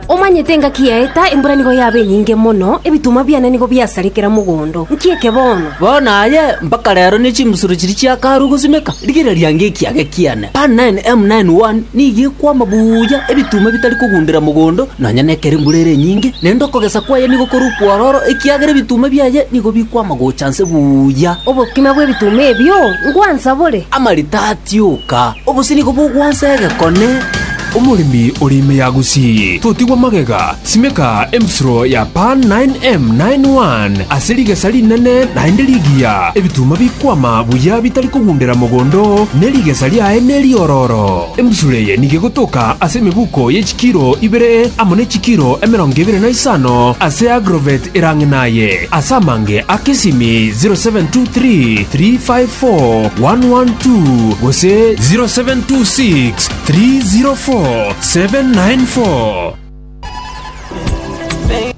Omanyete engaki yaeta, embura nigo yaba enyinge mono, ebituma biane nigo biasare kera mogondo. Nki eke bono? Bono aye mpaka rero ne chimbusuro chiria chiakarwa gosimeka, rigereria nge ekiage kiane. Pan 9, M 9, 1 nigo ekwama buya, ebituma bitari kogundera mogondo, nonya nekero embura ere enyinge, naende okogesa kwaye nigo kore okwororo, ekiagera ebituma biaye nigo bikwama gocha nse buya. Obokima bw'ebituma ebio, ngwansabore. Amarita 30. Tioka, obosio nigo bogwansa egekone. Omoremi oria ime ya Gusii, totigwa magega, simeka embusuro ya Pan 9M91 ase rigesa rinene naende rigiya, ebituma bikwama buya bitari kogundera mogondo, ne rigesa riaye neriororo. Embusuro eye nigo egotoka ase emebuko ye chikera. kilo ibere amo ne chikilo emerongo ebere na isano ase agroveti erang'e naye, ase amange a kesimi 0723354112 gose 0726304794.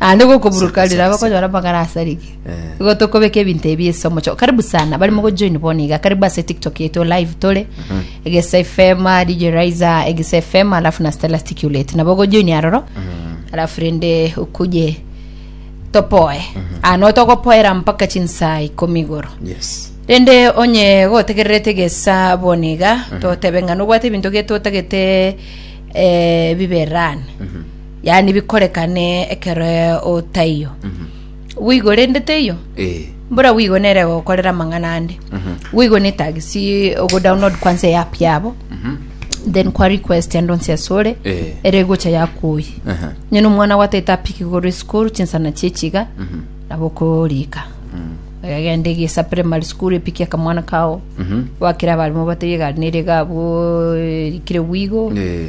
Naende igo okoburuka Asante, rira asante. bakonyora amagara asarigwe Eh. igo tokobeka ebinto ebi ase omochie karibu sana bari mogojoin bono iga karibu ase tiktok yaito live tore egesa fm dj riser egesa fm alafu na stella sticulate nabo ogojoin aroro alafu rende okuje topoe ano togopoera mpaka chinsaa ikomi igoro yes rende onye gotegererete gesa bono iga totebe ng'a nobwate ebinto getotagete eh, biberane yaani bikorekane ekero otaiyo bwigo rende teiyo Eh. mbora bwigo nere gokorera amang'ana ande bwigo netagisi ogodownload kwansa eapp yabo then kwa request ande onsi ase ore Eh. ere egocha yakuoyi Aha. nyene omwana gwataete apiki igoro esukuru chinsana chiechiga nabo okorika egagenda egesa primary school epiki akamwana kao wakera abarimo bataiyo egari nere iga abwo erikire bwigo Eh.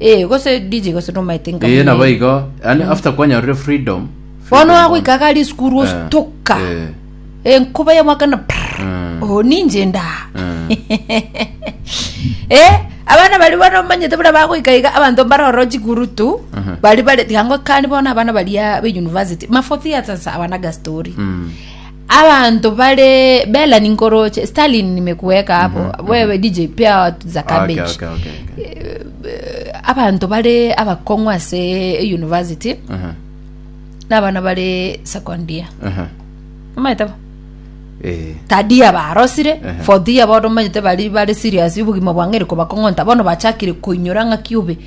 Eh, gose DJ gose nomaete nka Ee, nabo igo. Yaani after kwanyorire freedom. Bono freedom agoika bono. gari esukuru Eh, ositoka eh, enkuba ya mwaka na prrr, Mm. oh ninje nda Mm. eh abana bari bono manyete bura bagoika iga abanto mbaroro chikurutu Mhm. bari bari tiga ngo kani bono abana baria be university mafo theaters abana gastori mm. Abanto bare bela ninkoroche Stalin nimekuweka hapo wewe DJ pia watu za Okay, cabbage okay, okay, okay. Eh, abanto bare abakong'u ase university Aha, n'abana bare second year aha. omanyete bo Eh, tadia barosire Ehe. fourth year bodo omanyete bari bare serious obogima bwang'eri kobakong'onta bono bachakire koinyora ng'aki obe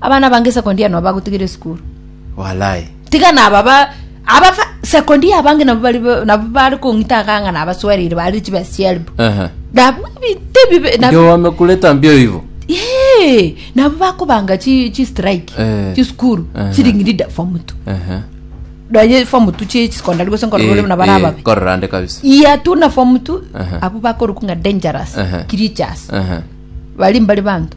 abana abange sekondi aya nabo bagotigera esukuru Walai. tiga naba ba aba fa- sekondi ya abange nabo bari ba- nabo bari kong'ita akang'a nabaswereire bari chiba sielbu Ehe. nabo ebite bibe nabo Ndio wamekuleta mbio hivyo. Yee, nabo bakobanga chi chi strike Eh. chi sukuru Aha. chiring'irida form two Ehe. donye form two chi secondary gose nkorora Eh, na bara eh, ababe kororande kabisa. iya tu na form two Aha. abo bakorokwa ng'a dangerous Aha. creatures Ehe. bari mbari banto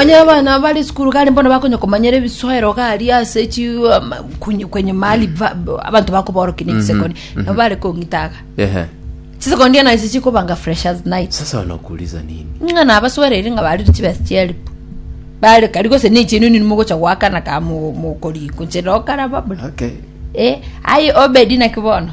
Onye abana bare sukuru gari mbono bakonya komanyera ebisoero gari ase chi ama- kunye- kwenye mahali va- ba- abanto bakoborokia na ebisekoni nabo bare kong'itaga Ehe. chisekondi ena ase chikobanga freshers night Sasa wanakuuliza nini? ng'a nabaswereire ng'a barire chibesa chielp bare kari gose ne echienu nini mogocha goakana ka mo- mokoriko nche nokaraba buna Okay. Eh, aye obedi naki bono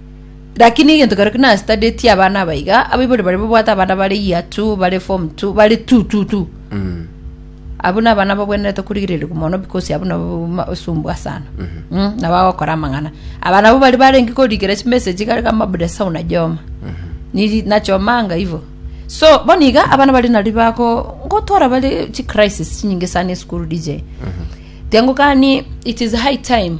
Rakini egento kerokia nastudyeti abana aba iga, abaibori baria babwate abana bare year two, bare form two, bare tu tu tu. Abwo nabana babwenerete korigererigwa mono because abwo nabo ma- osumbwa sana. Mm, nabo bagokora amang'ana. Abana abwo bari barenge korigera chimessage gari kama bude sa unajoma. Niri nachomanga ivo. So, bono iga abana baria nari bago ngotora bare chicrisis chinyinge sana esukuru DJ. Tiango gani it is high time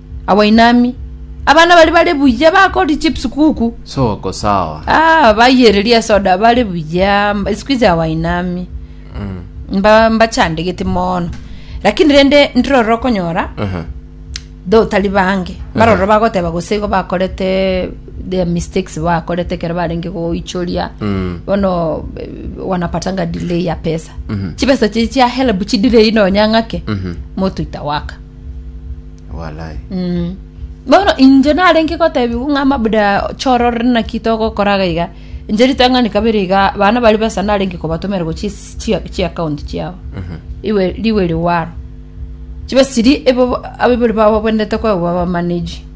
Abainami. Abana baria bare buya bakori chips kuku. Soko sawa. Ah, bayereria esoda bare buya. mba- Siku hizi abainami. Mm. Mba mbachandegete mono. Lakini rende ndiroro konyora Aha. do tari bange baroro bagoteba gose igo bakorete their mistakes bakorete kero barenge goichoria Mm. bono eh, wanapatanga delay ya pesa Mhm. chipesa chiria chia help chidirei nonya ng'ake Mhm. moto itawaka Walai. Mm. bono inche narenge gotebiwa ng'a mabuda choro rore naki togokora iga iga inche ritang'ani kabere iga bana bari besa narenge kobatomera gochia esi- chia chia account chiabo Mhm. iwe riwe riwaro chibe siri ebo ababori babo bendete kwegwa bamanage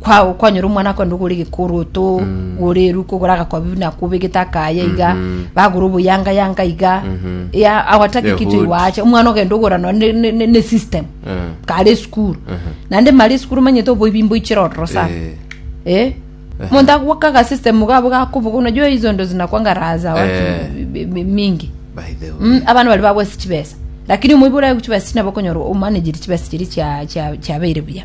kwa kwanyora omwana akonde ogore egekoroto gore eruka ogore agakobi buna akobegete akaya iga bagora oboyanga yanga iga ya awataki kitu Ehuti. iwache omwana ogenda ogora no ne, ne, ne, ne system Eh. kare esukuru naende mari esukuru manyete oboibi mboichire ororo sana Eh. eh monto agwakaga system gabo gakoboga unajua hizo ndo zinakwanga raha za watu Eh. mi- mi- mingi By the way. Mm, abana bari babwasi chibesa lakini omoibi oraye chibesa chinabo okonyora omanageri chibesa chiri chia- chia- chiabeire buya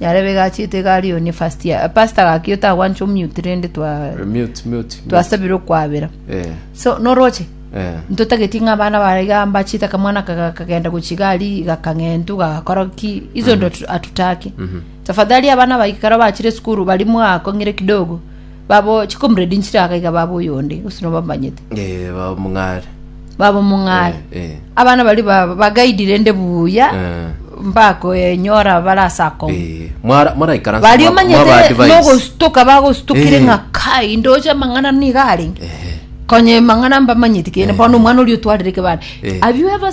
yarebe iga achiete iga aria onia first year. Eh, Pastor gaki otagwancha omute rende twa Eh, mute mute twasabire okwabera. eh So noroche eh ntotageti ng'a abana bare iga mbachiete akamwana aka gakagenda gochia iga aria gakang'entu gagakora ki iso ndo atu- atutaki. Tafadhali abana baikara bachire esukuru bari mwakong'ire kidogo Babo chikomredi nchire aka iga baba oyonde, gose nobamanyete. Eh, baba mong'are. Baba mong'are. Eh, eh. Abana bari ba- bagaidi rende buya, Eh. mbakoenyora bare ase akong'u. Eh, mwara- mwaraikarasa Bari mwa- omanyete mwaba-advise. nogostuka bagostukire Eh. ng'a kai ndoche amang'ana niga arenge. Eh. Konya amang'ana mbamanyeti kende, bono omwana oria otwarire kebare. Eh. Have you ever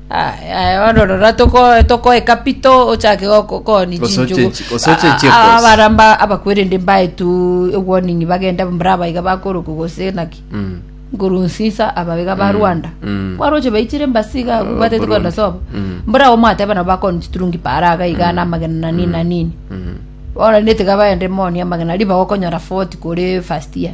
Ororo tokoeka pi to ochake gokoonia chinchugu. Abarabwo abakwerende mbae tu ewarning bagende mbora aba iga bakoroka gose naki. Nkurunziza aba iga ba Rwanda. Kwaroche baichire embasi iga batete kwenda sobo. Mbora abo mwateba nabo bakoonia chiturungi paara iga iga na amagena na nini na nini. Bono niga baende moonie amagena ribaga okonyora 40 kore first year.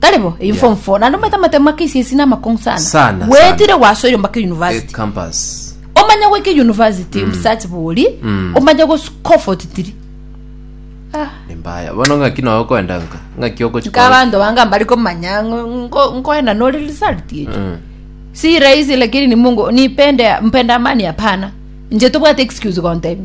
Tari bo, eyi Yeah. form 4 naende omanyete amatemo ma KCSE namakong'u sana. Sana, Bwetire sana. gwasoire mpaka Eh, university. campus. Omanye goika university obusachi bori, Mm. omanye goscomfort tiri. Ah. Nimbaya. Bono ng'aki noe okoenda nka. Ng'aki okochi Nka abanto banga mbari komanya ngo- ngo- nkoenda nore result echo. Mm. Si rahisi lakini ni Mungu nipende mpenda amani hapana. Nje tobwate excuse gontebi.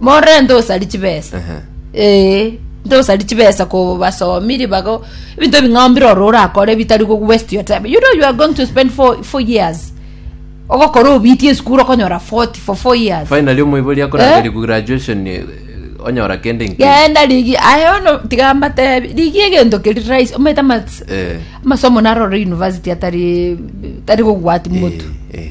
morore ntosari chibesa Ehe. ee ntosari chibesa ko basomi ribago ebinto ebing'ambire oro orakore bitari go waste your time you know you are going to spend four, four years ogokora obitie esukuru okonyora 40 for four years finally omoibori akorageria ku graduation eh, onyora kende inki genda rigi aye ono tiga mbatebi rigi egento keri rais omete amats Eh. amasomo narore university atari tari gogwati motu Eh, eh.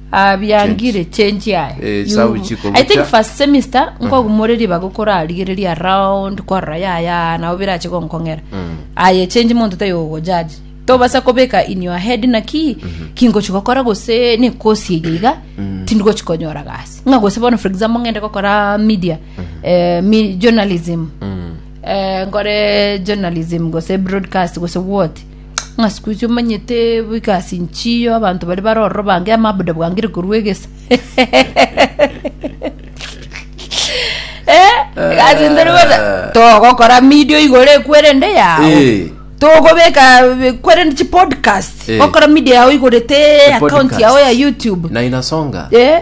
Ah, biangire change aye Eh, You- sabu chikobucha. i think first semester nkogumore ribaga okorarigereria around korora yaya nabo birache gonkong'era aye change monto tayogojaji tobasa kobeka in your head naki kingochi gokora gose nekosi eye iga tindigochi konyora gasi ng'a gose bono for example ng'ende gokora media eh, mi- journalism eh, nkore journalism gose broadcast gose what Ng'a siku ichio omanyete boika ase inchiyo abanto baria bare ororo bange amabuda bwangire korwa egesa. Eh, egasi ntari bosa togokora media igoro ekwerende yao. Eh. Togobeka ekwerende chi podcast. Eh. Gokora media yao igorete account yao ya YouTube. na inasonga Eh.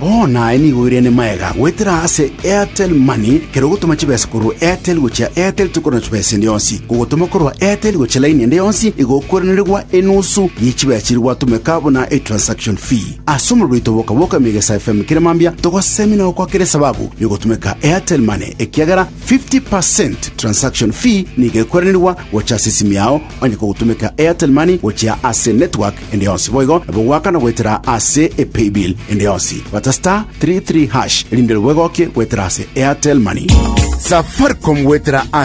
Bono aye nigo oirene maega goetera ase Airtel Money, kera ogotoma chibesa korwa Airtel gochia Airtel tokorora chibesa ende yonsi. Kogotoma korwa Airtel gochia laini ende yonsi igokwerenerigwa enusu ye chibesa chiria gwatomeka buna etransaction fee. Ase omorero oito bwoka bwoka ime Egesae FM kere mambia togosemi na gokoa kera esababu ya ogotomeka Airtel Money ekiagera 50 per cent transaction fee nigo ekwerenerigwa gocha ase esimi yao onye kogotomeka Airtel Money gochia ase network ende yonsi boigo nabo goakana goetera ase e paybill ende yonsi bata star 33 hash erinde nabo egokie goetera ase airtel money. Safaricom goetera ase.